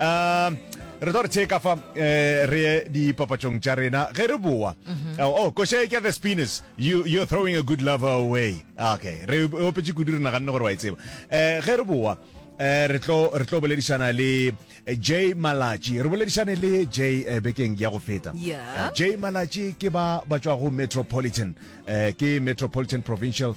um re tlo re tšhe ka fa um re ye dipapatšong tša rena ge re boa mhm. oh, oh koše ke the spinners you, you're throwing a good lover away okay re opetse kudu re naganne gore wa e tseba um ge re boa eh re tlo re tlo boledišana le eh, J Malachi re boledišane le J eh, bekeng ya go feta yeah. Eh, J Malachi ke ba ba tswa go Metropolitan eh ke Metropolitan Provincial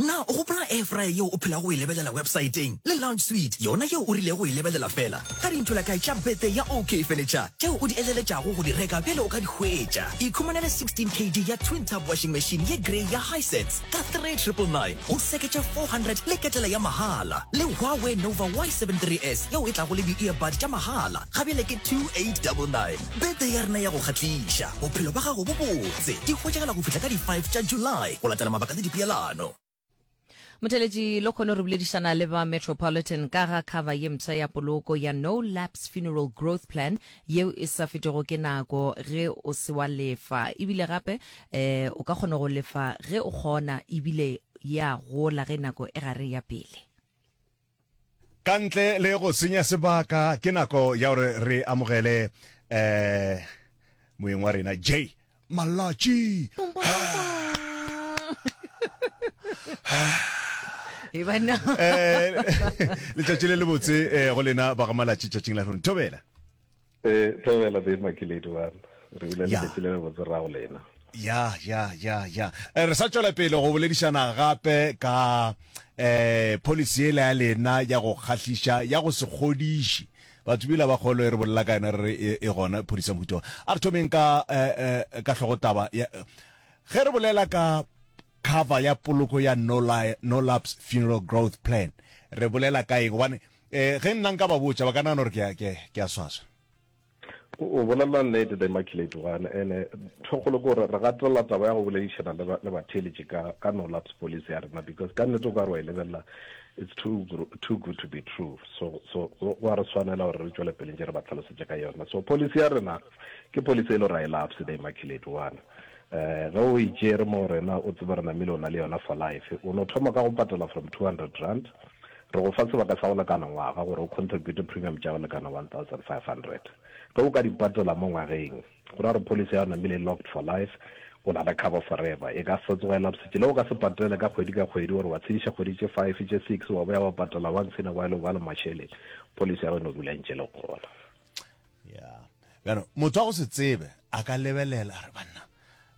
Na o gopola air fryer yeo o phelago o e lebelela websaeteng, le lounge suite yona yeo o rilego o e lebelela fela ka dinthwelakae tša birthday ya OK Furniture tšeo o di eleletšago go di reka bjale o ka di hwetša? Ikhumanele 16 kg ya twin tub washing machine ye grey ya Hisense ka 3999 go seketše 400 le ketela ya mahala, le Huawei Nova Y73S yeo e tlago le di-earbud tša mahala ga bjale ke 2899. Birthday ya rena ya go kgahliša, bophelo ba gago bo botse, di hwetšagala go fihla ka di 5 tša July go latela mabaka le dipeelano. Motheletši, lo kgone re boledišana le ba Metropolitan ka ga cover ye mpsha ya poloko ya No Lapse Funeral Growth Plan yeo e sa fetego ke nako ge o se wa lefa ebile gape um o ka kgona go lefa ge o kgona ebile ya gola ge nako e gare ya pele. Ka ntle le go senya sebaka, ke nako ya gore re amogele moeng wa rena J Malatši. e ba no eh letšatši le le botse eh, go lena ba ga malatši tšatšing la rona thobela E, tlogela be Makeledi wa re re bile Ya. letšatši le le botse rrago lena. ya ya ya ya Eh, re sa tšwela pele go boledišana gape ka eh policy yela ya lena ya go kgahliša ya go se kgodiše batho bila ba kgolo e re bolela ka yona re re e- e gona policy ya mohuta wa. a re thomeng ka eh, eh, ka hlogo taba ya eh, ge re bolela ka cover ya poloko ya no, Li- no laps funeral growth plan re bolela ka eng gobane Eh, ge nna nka ba botša, ba ka nagana gore ke a, ke, ke a swaswa. O bolela nnete The Immaculate One, ene thokgolo ke gore re gatelela taba ya go boledišana le, le batheeletši ka, ka no lapse policy ya rena because ka nnete o ka re wa e lebelela it's too, too good to be true so, so go a re swanela gore re tšwele peleng je re ba tlhalosetše ka yona so policy ya rena ke policy e le ra e lapse The Immaculate One um ge o itšere mo rena o tsebe re namile o na le yona for life o no thoma ka go patela from 200 rand Re go fa sebaka sa go lekana ngwaga gore o contribute premium tša go lekana 1500. Ge o ka di patela mo ngwageng, go ra gore policy ya go namile e locked for life, o na le cover forever. E ka se tsoga e lapsitše. Le ge o ka se patele ka kgwedi ka kgwedi or wa tshediša kgwedi tše five, tše six, wa boya wa patela once in a while o ba le mašele, policy ya go e no dula e ntše e le gona. ya bjano motho wa go se tsebe a ka lebelela a re banna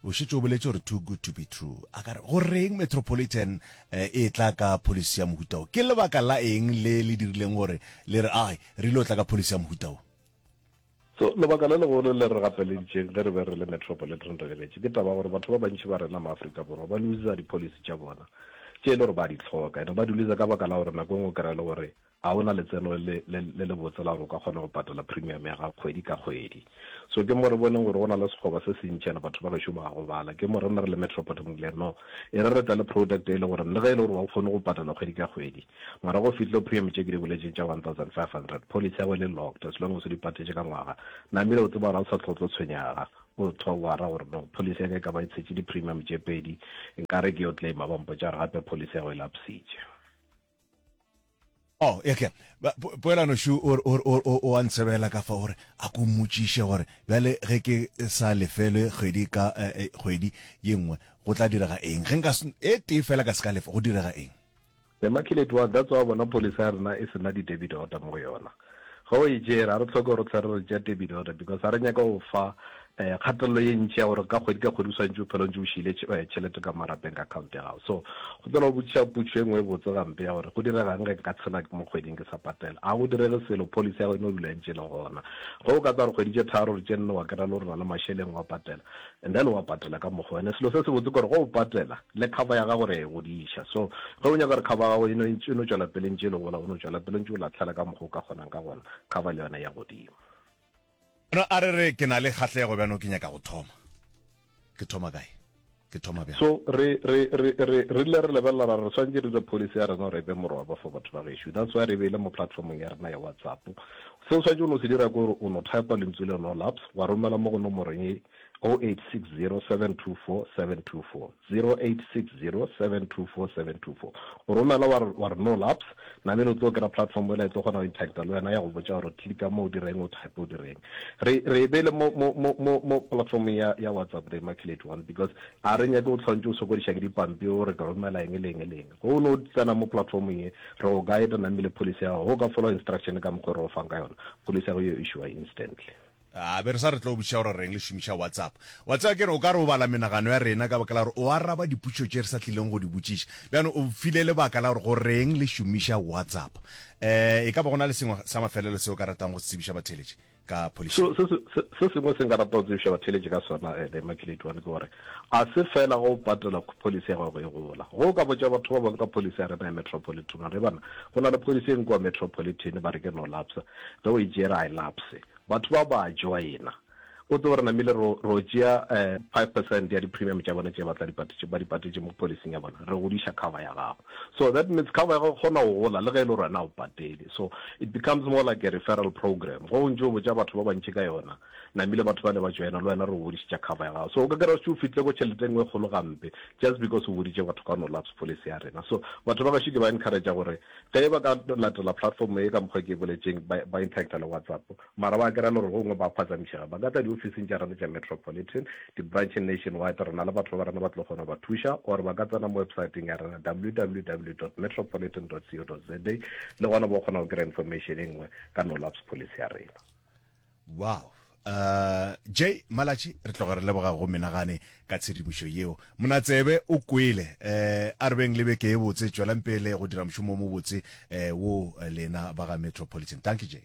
o šetse o boletse gore too good to be true a ka re go reng metropolitan eh, e tla ka policy ya mohuta o ke lebaka la eng le le dirileng gore le re ai re ile o tla ka policy ya mohuta o so lebaka le legolo le re gapeleditseng ge re be re le metropolitan re lebetse ke taba gore batho ba bantši ba rena maaforika borwa ba losisa di-policy tša bona tše e le gore ba di tlhoka ene ba di lose ka baka la gore nako e nngwe kry-e le gore ga o na letseno le le lebotse la gore o ka kgona go patala premium ya gago kgwedi ka kgwedi. So ke mo re boneng gore go na le sekgoba se se ntšhi, ene batho ba gešo ba a go bala. Ke mo re ne re le Metroport re rile no, e re re tla le product e le gore le ge e le gore ga o kgone go patala kgwedi ka kgwedi, mara go fihle premium tše ke di boletšeng tša 1500, policy ya go e le locked as long as o di patetše ka ngwaga. Namile o tseba gore ga o sa hlwa o tlo tshwenyaga, o thwa o ara gore no, policy ya ka e ka ba e tshetše di premium tše pedi, nka re ke yo claima, ba mpotša gore gape policy ya go e lapsitše. Oh, okay. Poelano shu o a ntshebela ka fa gore a ko mmotsiše gore bjale ge ke sa lefelwe kgwedi ka eh, eh, kgwedi ye nngwe go tla direga eng ge nka e tee fela ka se ka lefa go direga eng the maculate wa that's wa bona policy ya rena e sena di-debit order mo go yona Ge o e tšere, ga re hloke gore o tle re re tšea David Order, because ga re nyake go o fa kgatelelo ye ntši ya gore ka kgwedi ka kgwedi o swantše o phela o ntše o šiile tšhelete ka mogara bank account ya gago. So go tswela go botšiša potšo e nngwe e botse gampe ya gore go direga'ng ge nka tshela mo kgweding ke sa patela. Ga go direge selo, policy ya gago e no dula e ntše e le gona. Ge o ka tsa gore kgwedi tše tharo, re tše nne wa kry-a le gore o na le mašeleng wa patela, And then wa patela ka mokgwa wena. Selo se se botse kore ge o patela le cover ya gago re a e godiša. So ge o nyaka gore cover ya gago e no e no tšwela pele ntše e le gola o no tšwela pele o ntše o lahlela ka mokgwa o ka kgonang ka gona, cover le yona e ya godimo. Bjano a re re ke na le kgahlego bjano ke nyaka go thoma. Ke thoma kae? Ke thoma bjang? So re re re re re ile re lebelela ra re swantše re dire policy ya rena gore e be morwaba for batho ba gešo. That's why re e beile mo platformong ya rena ya WhatsApp Se o swanetše go no se dira ke gore o no thaipa lentswe le no laps wa romela mo go nomorong ye 0860 724 724, 0860 724 724. O romela wa re, wa re no laps, namene o tlo kry-a platform ela e tlo kgona go interacta le wena ya go botša gore klika mo o dire eng, o thaipe o dire eng. Re, re e beile mo, mo, mo, mo, mo platformong ya, ya WhatsApp re e maculate one because a re nyake o hlwa o ntše o sokodiša ke dipampiri gore ke romela eng le eng le eng. Ge o no tsena mo platformong ye, re go guider namile policy ya gago ge o ka followa instruction ka mokgo re go fang ka yona. Policy ya gago e yo issuwa instantly. A be re sa re tlo botšiša gore reng le šomiša WhatsApp. Wa tseba ke re o ka re o bala menagano ya rena ka baka la gore o araba dipotšišo tše re sa tlileng go di botšiša. Bjano o file lebaka la gore goreng le šomiša WhatsApp. E ka ba go na le sengwe sa mafelelo se o ka ratang go se tsebiša batheeletši? ka pholišing. Se, se, se, se sengwe se nka rata go tsebiša batheeletši ka sona, eh, The Immaculate One, ke gore a se fela go patela pholisi ya gago e gola. Go ka botša batho ba bangwe ka pholisi ya rena ya Metropolitan, wa re bona, go na le pholisi e nkoa Metropolitan, ba re ke no lapse, ge o e tšeere a e lapse. Batho ba ba joina. O tsebe re namile ro, ro tšea eh, five percent ya di-premium tša bona tše ba tla di patetše, ba di patetše mo pholising ya bona, re godiša cover ya gago. So that means cover ya go kgona go gola le ge e le gore wena o patele. So it becomes more like a referral program. Go ntse o botša batho ba bantši ka yona, namile batho bale ba joina le wena re o bodišitša cover ya gago. So o ka kry-a o fitlile ko tšhelete nngwe e kgolo gampe just because o boditše batho ka no-lapse policy ya rena. So batho ba gašo ke ba encourage gore ge ba ka latela platform e ka mokgwa ke e boletšeng ba ba interact le WhatsApp, Mara ba kera le gore gongwe ba phatsamišega, ba ka tla diofising tša rena tša Metropolitan, dibrancheng nationwide, re na le batho ba rena ba tlo kgona go ba thuša, or ba ka tsena mo websaeteng ya rena www dot metropolitan dot co dot za, le gona bo kgona go kera information e nngwe ka no lapse policy ya rena. Wow! Uh, Jay Malatši, re tloga re leboga go menagane ka tshedimošo yeo. Monatsebe o kwele, uh, a re beng le beke e botse, tšwelang pele go dira mošomo o mobotse uh, wo lena ba ga Metropolitan. Dankie Jay.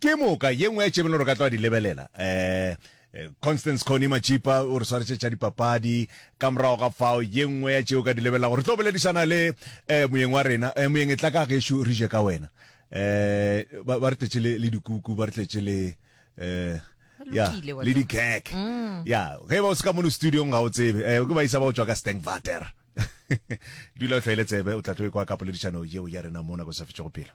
ke moka ye nngwe ya tšebelo re ka tloa di lebelela um constance coni machipa o re swaretše tša dipapadi ka morago ga fao ye nngwe ya tšeo ka di lebelelago re tlo boledišana le um moyeng wa rena um moyeng e tla ka gešo re je ka wena um ba re tletše le dikuku ba re tletše le um ya le dikek mm. ya ge ba o se ka mono studiong ga o tsebe um ke ba isa ba o tswa ka stank vater dula o tlhoele tsebe o tla tlo e kwa ka poledišano yeo ya rena mo nako sa fetšego pelo